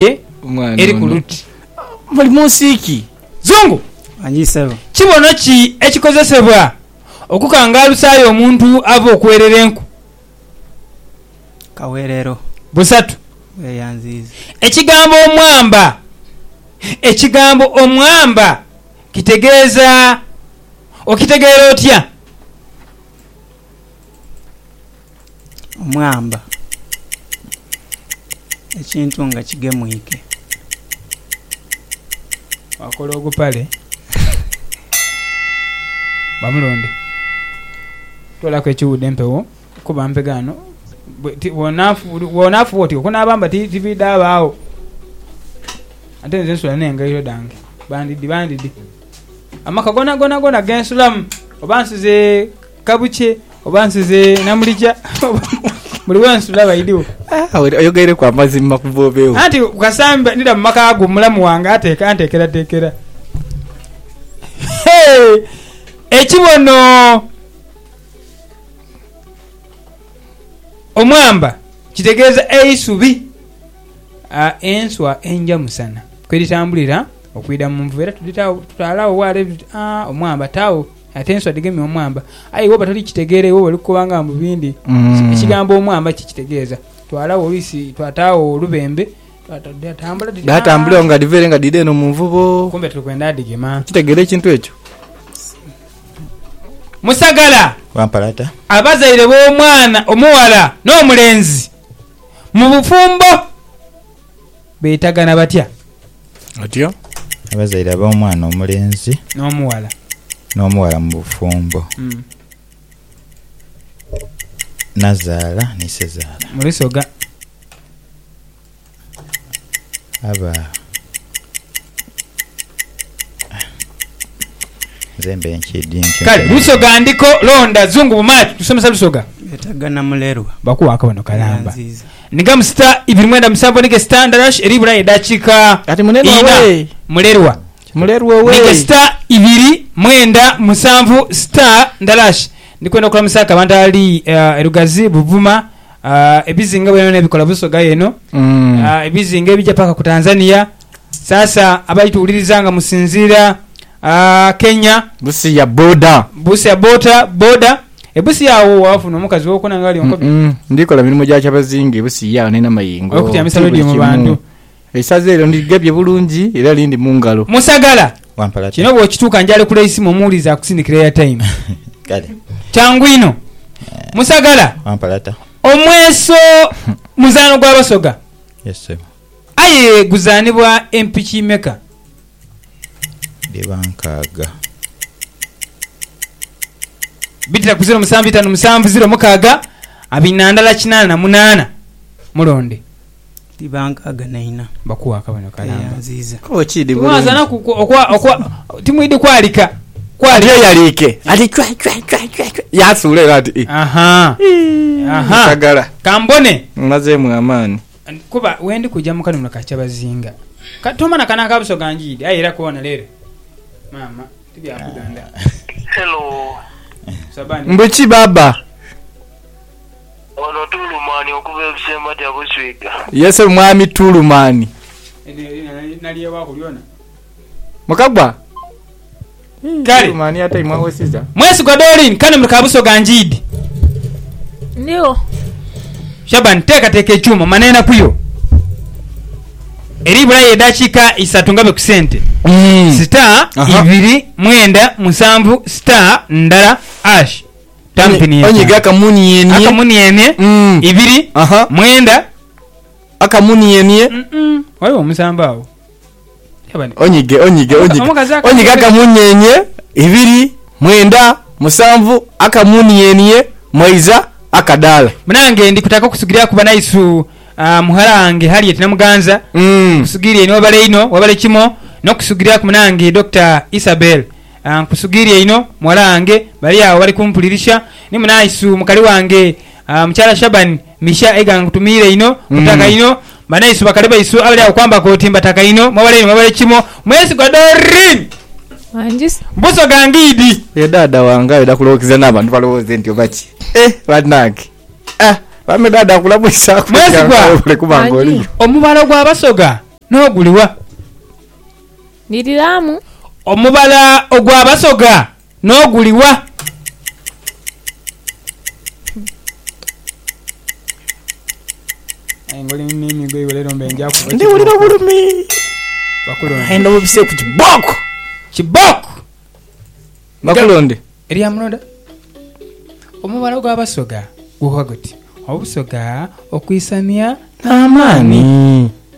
ye eri ku luti. Muli mu nsi ki? Zungu. Manyi ssebo. Kibono ki ekikozesebwa okukangaalusaayo omuntu ava okuweerera enku? Kaweerero. Busatu. Bweyanziiza. Ekigambo omwamba. Ekigambo omwamba kitegeeza okitegeera otya? omwamba ekintu nga kigemwike. Baakola ogupale. Bamulonde. Toolaku ekiwuudho empewo kuba mpega ghano. Bw'onaafuba otyo okunaabamba tibiidhabaagho. Ate nze nsula n'engaito dhange. Bandidi bandidi. Amaka goonagoona goona ge nsulamu oba nsize... Ka bukye oba nsize Namulija buli we nsula baidhiwo. Oyogeireku amazima kuva obeewo. Anti ku kasambi ndidha mu maka go mulamu wange anteekerateekera. Ekibono omwamba kitegeeza eisubi. Enswa enja musana kwe dhitambulira okwidha mu nvuba era tudhitaagho, tutaala agho waale tuti, Aa omwamba taagho. Ate enswa dhigemye omwamba. Aye iwe oba toli kitegeera, iwe oli kukoba nga mbu bindi. Ekigambo omwamba ki kitegeeza? Twalagho oluisi, twataagho olubembe, dhatambula dhiti, Dhatambula eyo nga dhiva ere nga dhidha eno mu nvubo. Kumbe tuli kwenda dhigema. Okitegeera ekintu ekyo? Musagala! Wampalata. Abazaire b'omwana omughala n'omulenzi mu bufumbo. Beetagana batya batyo? Abazaire ab'omwana omulenzi. N'omughala. N'omughala mu bufumbo. Nazaala ni Sezaala. Mu lusoga. Aba. Nze mbe nkyidhi ntyo. Kale lusoga ndiko londa zungu bumaati tusomesa lusoga. Beetagana mulerwa. Bakuwa akabonho kalamba. Ni ga musita ibiri mwenda musanvu ni gesita ndalash eri bula edakiika Kati mulerwa ina. we. Mulerwa. Mulerwa owe. Ni gesita ibiri mwenda musanvu sita ndalash. Ndi kwenda okulamusa ku abantu abali ah, e Lugazi, Buvuma, ah, ebizinga bwene bwene ebikola Busoga eno, Mm. ah, ebizinga ebija paka ku Tanzania. Sasa abali tuwuliriza nga musinziira Kenya. Busia boda. Busia bota, boda. E Busia agho wafuna omukazi wokuna nga ali onkobe? Mm-mm. Ndikola mirimo gya kyabazinga e Busia agho nina mayengo. Okutyamisa Ti buli radio mu kimu. bantu. Eisaza eryo ndigebye bulungi era lindi mu ngalo. Musagala. Wampala ta. Kino bwokituuka njalekula eisimu omuwulize akusindikire airtime. Kale. Kyangu inho. Musagala. Wampala ta. Omweso muzaano gwa Basoga. Yes, ssebo. Aye guzaanibwa empiki meka? dhiba nkaaga. Bidhira ku ziro musanvu itanu musanvu ziro mukaaga abiri na ndala kinaana na munaana. Mulonde. Dhiba nkaaga na ina. Bakuwe akabonero kalamba. Timwidhi kwalika. Adyeyaliike ati chwe chwe chwe chwe yaasuula era ati, Ii, nsagala. Ka mbone. Mmazeemu amaani. Kuba we ndi kuja mu kanunula ka kyabazinga. Ka tuma na kana ka Busoga njiidhi. Aye era koona leero maama ti bya kudonda. Hello. Saba ndi. Mbu ki baaba? Ono Tulumaani okuva e Busembajja Buswiga. Ye ssebo mwami Tulumaani. Eryo nalyewaku lyona. Mukagwa. Kale. Mwesigwa Doreen kane muli ka Busoga Njiidi. Ndigho. Shaban teekateeka ekyuma omane enaku yo. Eri bulayo edaakiika isatu ngabe ku sente. Star ibiri mwenda musanvu star ndala ash tampini ya Onyiga akamunienie. Akamunienie ibiri mwenda. Akamunienie. Ghaligho omusanvu agho. Onyige, onyige, onyige, onyige akamunyeenye, ibiri, mwenda, musanvu, akamunienie, mweiza, akadaala. Munange ndi kutaka okusugiriaku banaisu mughala wange Harriet Namuganza, nkusugirie inho webale inho webale kimo nokusugiriaku munange Dokita Isabel nkusugirie inho mughala wange bali agho bali kumpulirisia ni munaisu mukali wange mukyala Shaban. Misha egange nkutumiire inho, nkutaka inho, banaiswe bakali baisu abali agho kwambaka oti mbataka inho, mwebale inho mwebale kimo, mwesigwa Doreen! Wanjise. Mbuso gange idi. Oyo dada wange ayenda kulowokeza nabantu balowoze nti oba ki ehh banange ahh bambi dada akulamwisa kuliga nga webale kuba nga oliyo. Omubala ogwa Basoga noguliwa? Ndhiriramu. Omubala ogwa Basoga N'oguli wa? Aye nga oli mu miimi gwaibwe leero mbe nja kuba Ndi wulira kibooko. obulumi. Bakulonde. Aye ndobobise ku kibooko. Kibooko! Bakulonde. Erya muloda. Omubala gwa Basoga guhwa guti, Obusoga okwisania n'amaani. Amaani.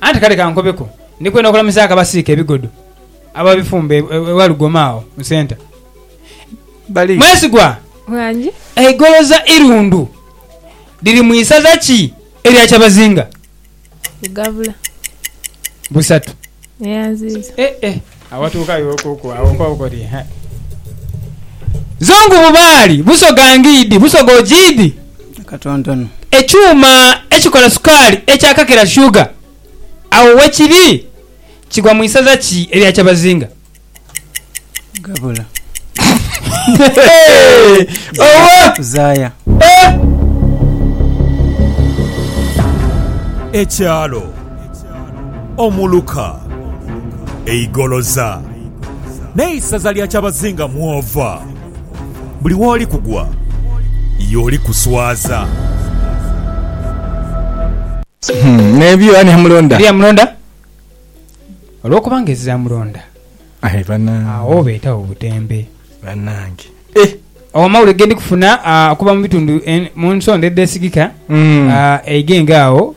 Anti kale kankobeku, ndi kwenda okulamizaaku abasiika ebigodo ababifumba e Walugoma agho mu centre. Mwesigwa, eigoloza Irundu liri mu isaza ki erya Kyabazinga? Busatu. Agho watuukayo okuku agho okwabo koti, He! Zo ngubu Baali busoga ngiidi busoga ojiidi? Akatontono. Ekyuma ekikola sukaali ekya Kakira Sugar agho wekiri? Kigwa mu isaza ki erya Kyabazinga? Gabula. Oba! Zaaya. Ekyalo. Omuluka, e Igoloza, n'eisaza lya kyabazinga mw'ova. Buli w'oli kugwa y'oli kuswaza. N'ebyo ani yamulonda? Eriyo amulonda? Olw'okubanga ezira amulonda. Aye banange. Agho obetagho butembe. Banange eh. Agho amawulire gendi kufuna okuva mubitundu munsonda edhesigika eigenge agho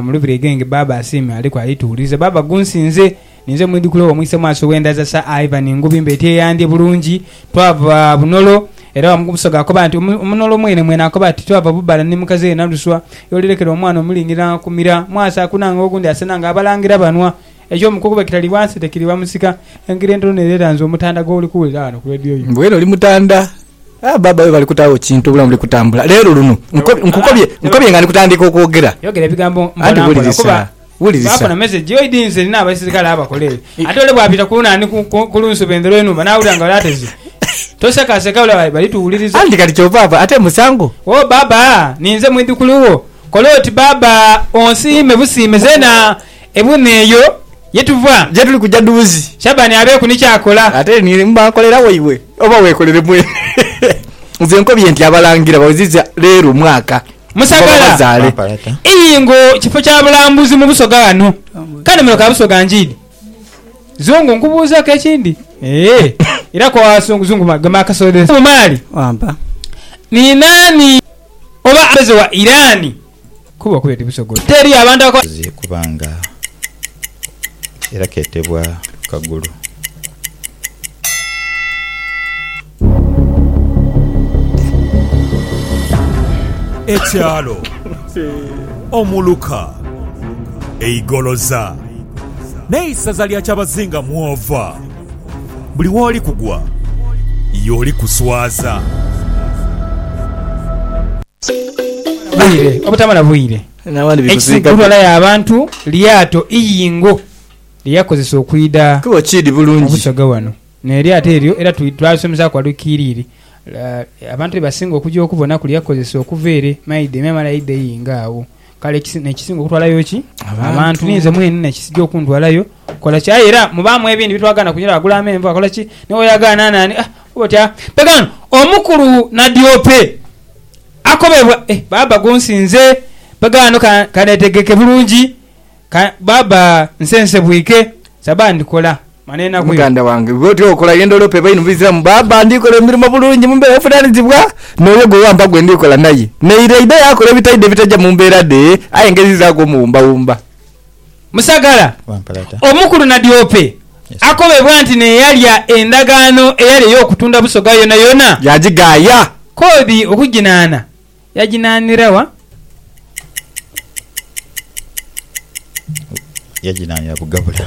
mulubiri eigenge Baba asiime aliku ali tuwuliriza Baba gunsinze ninze omwidhukulu owo mwise mwaaso wendhaza Sir Ivan Ngubi mbeti eyandhye bulungi twava bunolo era wamu kubusoga akoba nti omunolo mwene mwene akoba ati twava bubala ni mukaziwe Naluswa yolirekera omwana omulingira akumira mwaaso akunanga ogundi asena nga abalangira banwa Eky'omu kukuba ekitali wansi tekiriba musika. Engeri entono neere eranze omutanda gw'oli kuwulira ghano ku leediyo yo. Mbwenu oli mutanda? Ah, baaba webale kutaagho kintu, obulamu buli kutambula. Leero luno nkukobye, nkukobye nga ndi kutandiika okwogera. Yogera ebigambo mpola mpola kuba baafuna mesegi yo. Idi nze nina abaisirikale abakola eyo. Ate ole bwapita ku naani ku lunsuba endhelo y'enhumba n'awulira nga ole ateze, tosekaaseka olaba bali tuwuliriza. Anti kati ky'ovaava ate musango. Wo baaba, ninze mwidhukulu wo. Kola oti baaba onsiime busiime zeena. Ebuuma eyo ye tuva gye tuli kuja dhuuzi. Shabani abeeku ni ky'akola. Ate ni mba nkolera waibwe oba weekolere mwene? Nze nkobye nti Abalangira baweziza leero mwaka guva babazaale. Iyingo kifo kya bulambuzi mu Busoga ghano. Kale muno ka Busoga njiidi. Zungu nkubuuzeeku ekindi? Eeh, era kowa Zungu. Zungu gema akasoda. Bumaali, ni naani oba abeze wa Irani? Kuba okubye ti busogozi. Teri abantu abakola. Zi kubanga era ketebwa kagulu. Ekyalo Omuluka, Eigoloza n'eisaza lya Kyabazinga mwova. Buli woli kugwa y'oli kuswaza. Bwire obutamala bwire, ekisigulwa ya bantu lyato Iyingo lye yakozesa okwidha mu busoga wano. N'eryato eryo era twalisomesaku wali kiiriri, abantu be basinga okugya okubona ku lye yakozesa okuva ere, maidha emyamala yaidha Iyingo agho. Kale nekisinga okutwalayo ki abantu ninze mwene nekisija okuntwalayo kola ki aye era mubamu ebindi bitwagana kunyira agula amenvu akola ki niwe yagana nani ah kuba otya pegano omukulu nadiope akobebwa eh baba gunsinze pegano kanetegeke bulungi baba nsense bwike sabandi kola. Muganda wange, gwe otya okola ye ndholope ebainhe mu Buisiramu? Baaba, ndi kola emirimo bulungi mu mbeera evunaanizibwa n'oyo gwe wampa gwe ndi kola naye. Naire aidha yaakola ebitaidha ebitaja mu mbeera dhe, aye ngezizaaku omuwumbawumba. Musagala, omukulu Nadiope, akobebwa nti n'eyalya endagaano eyali ey'okutunda Busoga yonayona, yaagigaaya. Kodi okuginaana yaginaanira wa? Yaginaanira Bugabula.